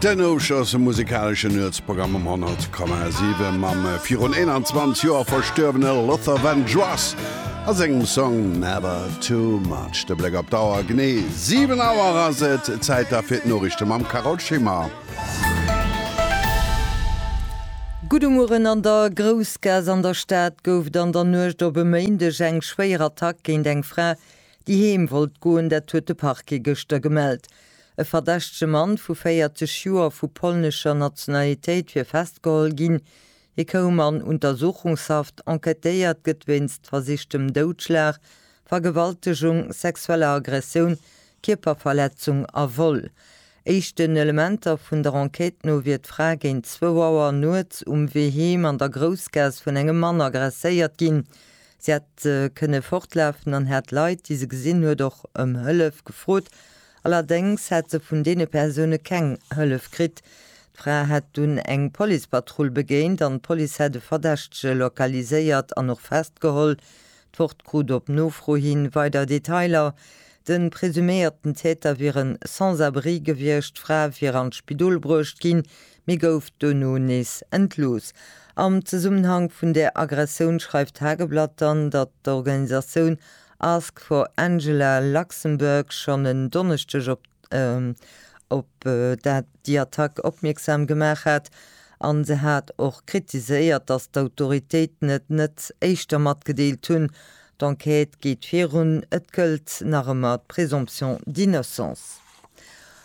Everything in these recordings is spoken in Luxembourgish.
Den Ousch ass e musekaleschen Nuetsprogramm um 100,7 mam virun 21 Joer verstuerwene Luther Vandross a sengem Song Never Too Much. De Bléck op d'Auer, Genee 7 Auer ass et, Zäit da fir d'Noriichte mam Carole Schimmer. Gudde Mueren, An der Groussgaass an der Stad gouf et an der Nuecht op e Méindeg eng schwéier Attack géint eng Fra, Déi heem wollt goen, dat huet de Parquet gëschter gemellt. E verdächtege Mann vu 40 Joer vu polnescher Nationalitéit wier festgeholl ginn. Hie koum an Untersuchungshaft. Enquêtéiert gëtt wéinst versichtem Doudschlag, Vergewaltegung, sexueller Aggressioun, Kierperverletzung a Vol. Éischten Elementer vun der Enquête no wier d'Fra géint zwou Auer nuets um Wee heem an der Groussgaass vun engem Mann aggresséiert ginn. Si hat kënne fortlafen an hat d'Leit, déi se gesinn huet, och ëm Hëllef gefrot. Allerdéngs hat se vun deene Persoune keng Hëllef kritt. D'Fra hat dunn eng Policepatrull begéint an d'Police hat e Verdächtege lokaliséiert an och festgeholl. D'Wort krut op Nofro hi weider Detailer. De presuméierten Täter wier e Sans-abri gewiescht. D'Fra wier an d'Spidol bruecht ginn, Mee gouf dono nees entlooss. Am Zesummenhank vun där Aggressioun schreift d'Tageblatt dann, datt d'Organisatioun Ask for Angela Luxembourg schonn en Donneschdeg op op déi Attack opmierksam gemaach hat. A se hat och kritiséiert, datt d'Autoritéiten et net éischter matgedeelt hunn. D'Enquête geet virun, et gëllt nach ëmmer d'Présomption d'innocence.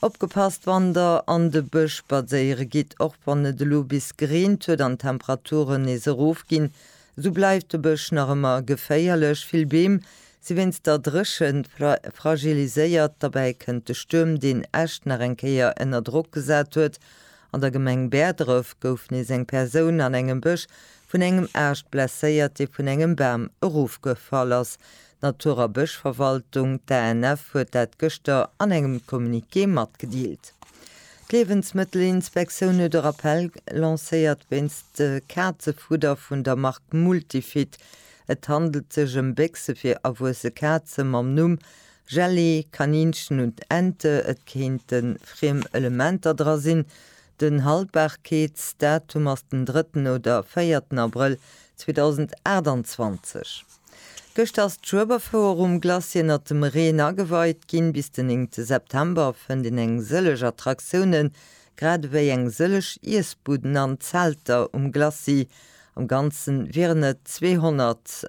Opgepasst, wann der an de Bësch spadséiere gitt, och wann et elo bis gereent huet an d'Temperaturen nees erofginn, esou bleift de Bësch nach ëmmer geféierlech. Vill Beem si wéinst der Dréchent fragiliséiert. Derbäi kënnt de Stuerm, deen Äscht nach eng Kéier ënner Drock gesat huet. An der Gemeng Bäerdref gouf nees eng Persoun an engem Bësch vun engem Aascht blesséiert, dee vun engem Bam erofgefall ass. D'Natur a Bëschverwaltung, d'ANF, huet dat gëschter an engem Communiqué matgedeelt. D'Liewensmëttelinspektioun huet e Rappell lancéiert wéinst Kazefudder vun der Mark Multifit. Et handelt sech ëm Béchse fir erwuesse Kaze mam Numm Jelly, Kaninchen und Ente. Et kéinte friem Elementer dra sinn, Den Haltbarkeetsdatum ass den drëtten oder véierten Abrëll 2028. Gëschter ass d'Schueberfouer um Glacis ënnert dem Reen ageweit ginn. Bis den néngte September fënnt een eng sëlleg Attraktiounen, grad ewéi eng sëlleg Iessbuden an Zelter um Glacis. Am Ganzen wieren et 200.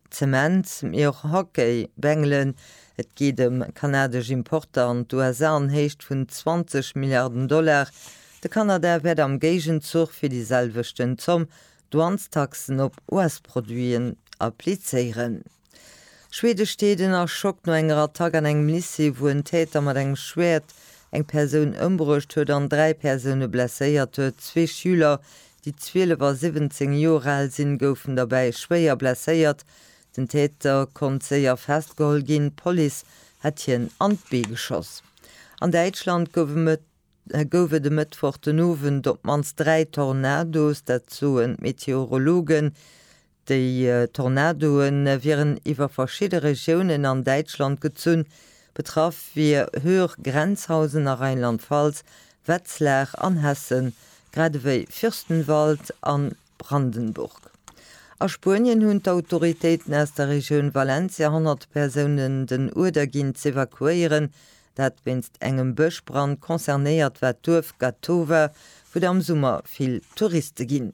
Zement, mee och Hockey, bengelen. Et geet ëm kanadesch Importer an d'USA an Héicht vun 20 Milliarden Dollar. De Kanada wäert am Géigenzuch fir déi selwechten Zomm Douanestaxen op US-Produiten applizéieren. Schwede steet ënner Schock no enger Attack an engem Lycée, wou en Täter mat engem Schwäert eng Persoun ëmbruecht huet an dräi Persoune blesséiert huet, zwee Schüler, Déi 12 a 17 Joer al sinn, goufen derbäi schwéier blesséiert. Den Täter konnt séier festgeholl ginn, d'Police hätt hien an d'Bee geschoss. An Däitschland gouf et e Mëttwoch den Owend op d'mannst dräi Tornados, dat soen d'Meteorologen. Déi Tornadoe wieren iwwer verschidde Regiounen an Däitschland gezunn. Betraff wier Höhr, Grenzhausen a Rheinland-Pfalz, Wetzlar an Hessen, grad ewéi Fürstenwald a Brandenburg. A Spuenien hunn d'Autoritéiten aus der Regioun Valencia 100 Persounen den Uerder ginn z'evakuéieren, dat wéinst engem Bëschbrand. Concernéiert war d'Duerf Gatowa, wou et am Summer vill Touriste ginn.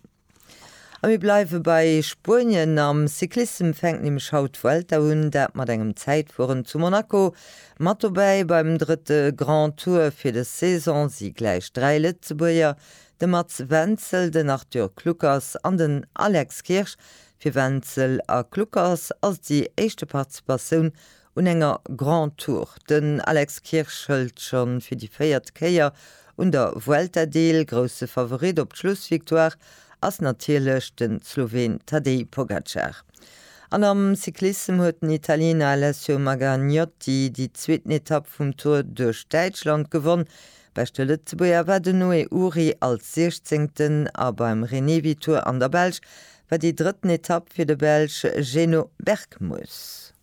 A mir bleiwe bei Spuenien. Am Cyclissem fänkt nämlech haut d'Vuelta un, dat mat engem Zäitfueren zu Monaco. Mat dobäi beim drëtte Grand Tour fir dës Saison si gläich dräi Lëtzebuerger, de Mats Wenzel, den Arthur Kluckers an den Alex Kirsch. Fir Wenzel a Kluckers ass et déi éischte Participatioun un enger Grand Tour. Den Alex Kirsch hëlt schonn fir déi véiert Kéier un der Vuelta deel. Grousse Favorit op d'Schlussvictoire ass natierlech den Sloween Tadej Pogacar. An am Cyclissem huet den Italiener Alessio Maganiotti déi zweeten Etapp vum Tour duerch Däitschland gewonn. Beschte Lëtzebuerger war den Noé Uhry als Siechzéngten a beim Renewi Tour an der Belsch war déi drëtten Etapp fir de Belsch Geno Bergmus.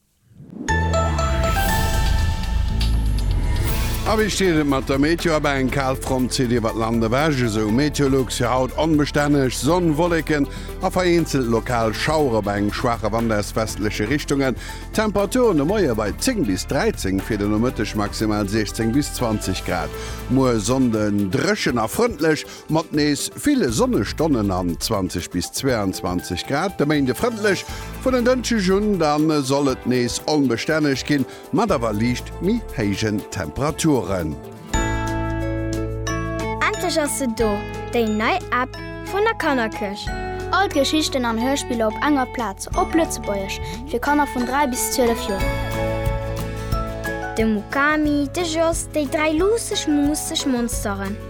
A wéi steet et mat der Meteo? Abei eng Kalfront zitt iwwert d'Land ewech, esou Meteolux. Fir haut onbestänneg Sonn, Wolleken a vereenzelt lokal Schauere bei engem schwaache Wand aus westleche Richtungen. Temperaturen de Moie bei 10 bis 13, fir den Nomëtteg maximal 16 bis 20 Grad. Muer Sonnde dréchen a frëndlech. Mat nees ville Sonnestonnen an 20 bis 22 Grad de Méinde frëndlech. Vun en Dënschdeg un da soll et nees onbestänneg ginn, mat awer liicht méi héijen Temperaturen. Endlech ass se do, déi nei App vun der Kannerkirch! All d'Geschichten an Hörspiller op enger Plaz, op Lëtzebuergesch, fir Kanner vun 3 bis 12 Joer. De Mukami, de Jos, déi dräi luusseg, muusseg Monsteren.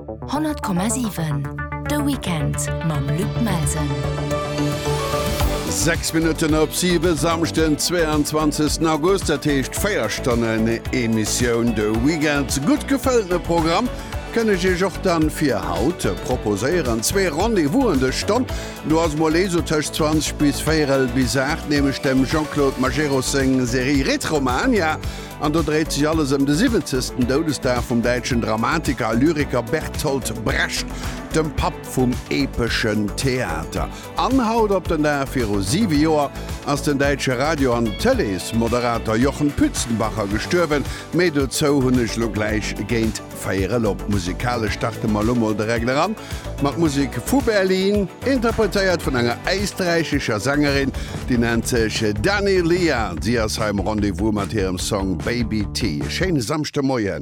100,7 De Weekend mam Luc Melsen. 6 Minutten op 7 Samschten 22. August dat heescht Féierstonnen Emissioun de Weekend gutt gefëllte Programm kënne ech och dann fir haut proposéieren zwee Rendevousen de Stonn. Du ass mol eso tëscht 20 bis Véierel bis 8 nämlech dem Jean-Claude Majerus seng Serie Retromania. Ja. An do dréit sech alles ëm de siwwenzegsten Doudesdag vum däitschen Dramatiker a Lyriker Bertolt Brecht, dem Papp vum epeschen Theater. An haut op den Dag viru siwe Joer ass den däitsche Radio an Tëleesmoderater Jochen Pützenbacher gestuerwen, méi dozou hunn ech elo gläich géint Féier elop, musekalesch starte mer elo mol direkt eran mat Musek vu Berlin, interpretéiert vun enger éisträichescher Sängerin, déi nennt sech Dani Lia. Si ass hei am Rendez-vous mat hirem Song Baby T. E schéine Samschdemoien.